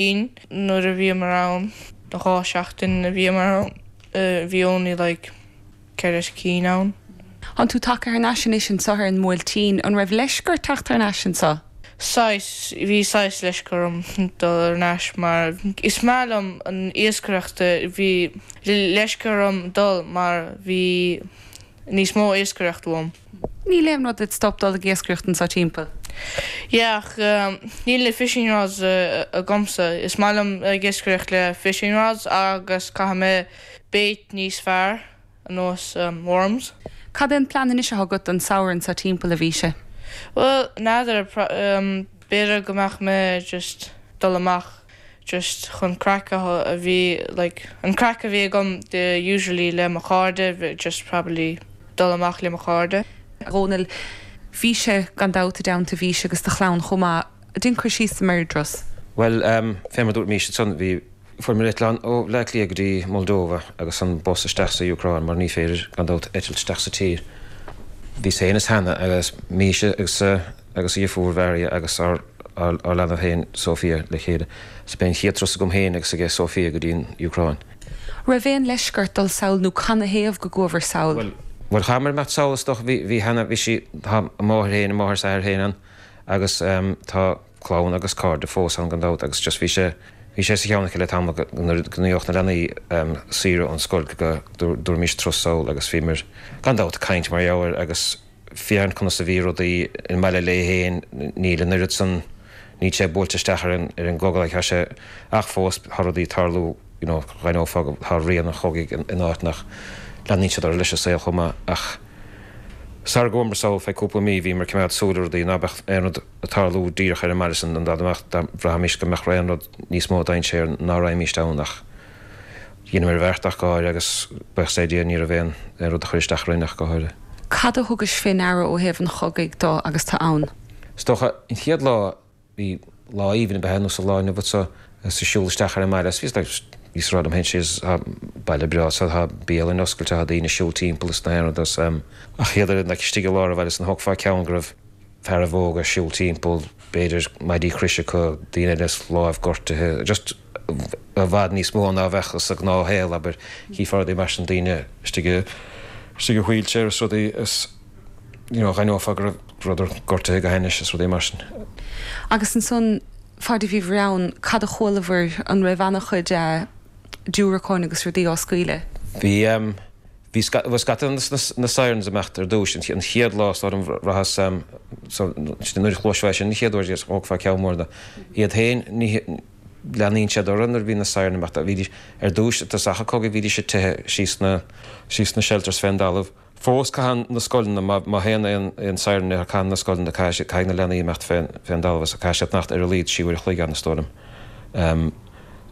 Sin nuair a bhíomar ann, na dhá seachtain a bhíomar ann, bhí only like ceithre cinn ann. Tánn tú tagtha thar n-ais anois anso ar an mBuailtín, an raibh leisce ort teacht thar n-ais anso? Saghas, bhí saghas leisce orm dul thar n-ais mar is maith liom an iascaireacht, bhí leisce orm dul mar bhí níos mó iascaireacht uaim. Níl aon rud id stop dul ag iascaireacht anso timpeall. Yeah, ach níl na fishing rods agamsa. Is maith liom ag iascaireacht le fishing rods agus caithfidh mé bait níos fearr ar nós worms. Cad é an plean anois atá agat don samhradh anso timpeall a Mhisha? Bhuel, n'fheadar, b'fhéidir go mbeadh mé just dul amach just chun craic a bhí like an craic a bhí agam usually le mo chairde just probably dul amach le mo chairde. Dhónaill, bhís-se gan dabht i dteannta Mhisha agus do chlann chomh maith. Dein cur síos ar bhur dturas. Bhuel, fé mar dúirt Misha ansan, bhí. Fuaireamar eitleán ó Bhleá Cliath go dtí Moldova agus an bus isteach sa Úcráin mar ní féidir gan dabht eitilt isteach sa tír. Bhí Sean is Hannah agus Misha agus agus a mháthair Maria agus ár leanbh féin Sofia le chéile. Sea, b'é an chéad turas agam féin agus aige Sofia go dtí an Úcráin. raibh aon leisce ort dul sall nó canathaobh go gcuabhair sall? Bhuel. Bhuel, chuamair sall is dócha. Bhí, bhí cheana, bhí sí, tá a máthair féin, a máthair is athair féin ann agus tá clann agus cairde fós ann gan dabht agus just bhí sé, bhí sé sa cheann aici le tamall go, nuair a gheobhadh na leanaí saoire ón scoil go, dtabharfaimis turas sall agus bhíomair gan dabht ag caint mar gheall air agus. féachaint conas a bhí rudaí i mbaile léi féin, níl an oiread san, níl sé buailte isteach ar an, ar an gcogadh ag tá sé, ach fós tá rudaí ag tarlú, you know, d'aithneofá go, tá rian an chogaidh in, in áiteanna ach leanfaidh siad orthu leis an saol chomh maith, ach sara gcuamair sall feadh cúpla mí, bhíomar ag coimeád súil le rudaí, ná beadh aon rud ag tarlú díreach ar an mbaile san, an dá mbeadh, dá bhraithfimís go mbeadh aon rud níos mó dainséar, ná raghaimís ann, ach. Dheineamair an bheart ach go háirithe agus buíochas le Dia ní raibh aon rud a chuir isteach orainn ach go háirithe. Cad a thugais fé ndeara ó thaobh an chogaidh de agus tú ann? Is dócha, an chéad lá, bhí lá aoibhinn abair ar nós an lá inniu anso agus tú ag siúl isteach ar an mbaile agus bhí, bhí, bhíos ag rá liom féin sea, tá baile breá anso, tá bialanna oscailte, tá daoine ag siúl timpeall is gach aon rud agus, em. ach hiad ar an, like, istigh i lár an bhaile san thógfá ceann go raibh, fearaibh óga ag siúl timpeall, b'fhéidir maidí croise acu, daoine eile lámh gortaithe, just i bhfad níos mó ná a bheadh sa ghnáthshaol, abair, chífeá rudaí mar sin, daoine istigh i, istigh i wheelchair is rudaí is you know d'aithneofá go rabhadar gortaithe go hainnis is rudaí mar sin. Agus ansan, faid a bhíobhair ann, cad a chualabhair, an raibh ana chuid eh diúracáin agus rudaí á scaoileadh? Bhí em, Bhí scata de na sirens imeacht ar dtúis an chéad lá so ar an bhfaiche so nuair a chloisfeá sin an chéad uair is thógfá ceann mór de iad féin. Leanaíonn siad orthu nuair a bhíonn na sirens imeacht. Bhídís ar dtúis i dtosach an chogaidh bhídís ag teitheadh síos na shelters fén dtalamh. Fós caitheann na scoileanna, má théann aon siren air caitheann na scoileanna, caithfidh na leanaí imeacht fén dtalamh is caithfidh siad fanacht ar a laghad trí uair a chloig ann is dóigh liom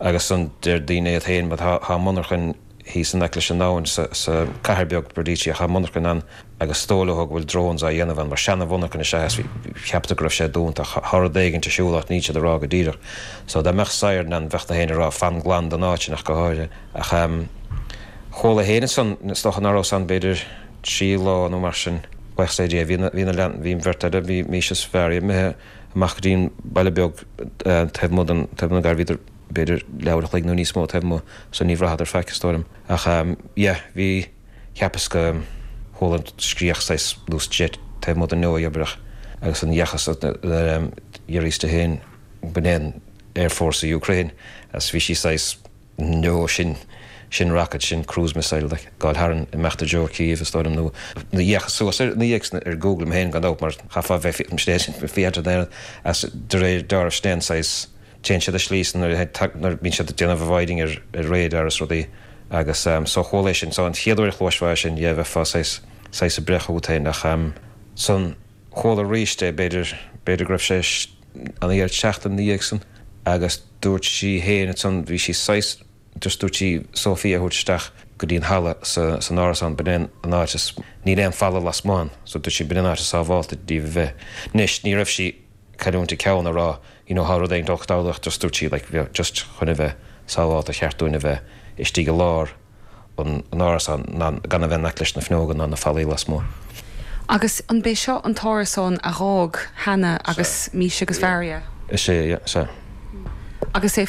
agus ansan deir daoine iad féin bhuel tá monarchain, Thíos in aice leis an abhainn sa cathair beag Berdychiv monarchain ann agus is dóigh leo go bhfuil drones á dhéanamh ann mar seana mhonarchain is ea is cheapfá go raibh sé dúnta ach tá rud éigint ar siúl ach níl siad ag rá go díreach so dá mbeadh siren ann bheadh na héinne ag rá fan glan den áit sin ach go háirithe ach ehm chuala féin ansan is dócha ná raibh san b'fhéidir trí lá nó mar sin like sa deireadh bhí na bhí na leanaí bhí an bheirt eile bhí mise is Varia imithe amach go dtí an baile beag taobh amuigh den taobh na gar bhíodar b'fhéidir leathuair a chloig nó níos mó taobh amuigh, so ní bhraitheadar faic, is dóigh liom. Ach, yeah, bhí, cheapas go chuala scréach saghas, nó jet, taobh amuigh den leabhaidh, abrach, agus an dheachthas a d'iarr Easter féin, ba é an Air Force sa Ukraine, is bhí sí saghas, no, sin, sin rocket, sin cruise missile, like, gabháil tharainn, imeacht i dtreo Kyiv, is dóigh liom, nó, nó dh'fhéachas suas ar, nó dh'fhéachas ar Google mé féin, gan dabht, mar chaithfeá bheith, bhí, is de réir dealraimh, sin saghas, téann siad íseal ansan nuair a nuair bíonn siad ag déanamh avoiding ar ar radar is rudaí agus ehm so chuala é sin so an chéad uair a chloisfeá é sin yeah bheifeá saghas saghas ag breith chugat féin ach ehm ansan chuala aríst é b'fhéidir b'fhéidir go raibh sé an deireadh seachtaine ina dhiaidh san agus dúirt sí féin ansan bhí sí saghas just dúirt sí Sophia a thabhairt isteach go dtí an halla sa san árasán b'in é an áit is níl aon falla lasmuigh ann so dúirt sí b'in an áit is sábháilte dúinn a bheith anois ní raibh sí cailliúint a ceann, ag rá you know thá rud éigin dul ag tarlac just dúirt sí like bheadh just chun a bheith sábhálta ba cheart dúinn a bheith istigh i lár an árasán ná gan a bheith in aice leis na fuinneoga ná na fallaí lasmuigh. Agus an b'é seo an t-árasán a dh'fhág Hannah agus Misha agus Varia? Is é, yeah. Is é. Agus é.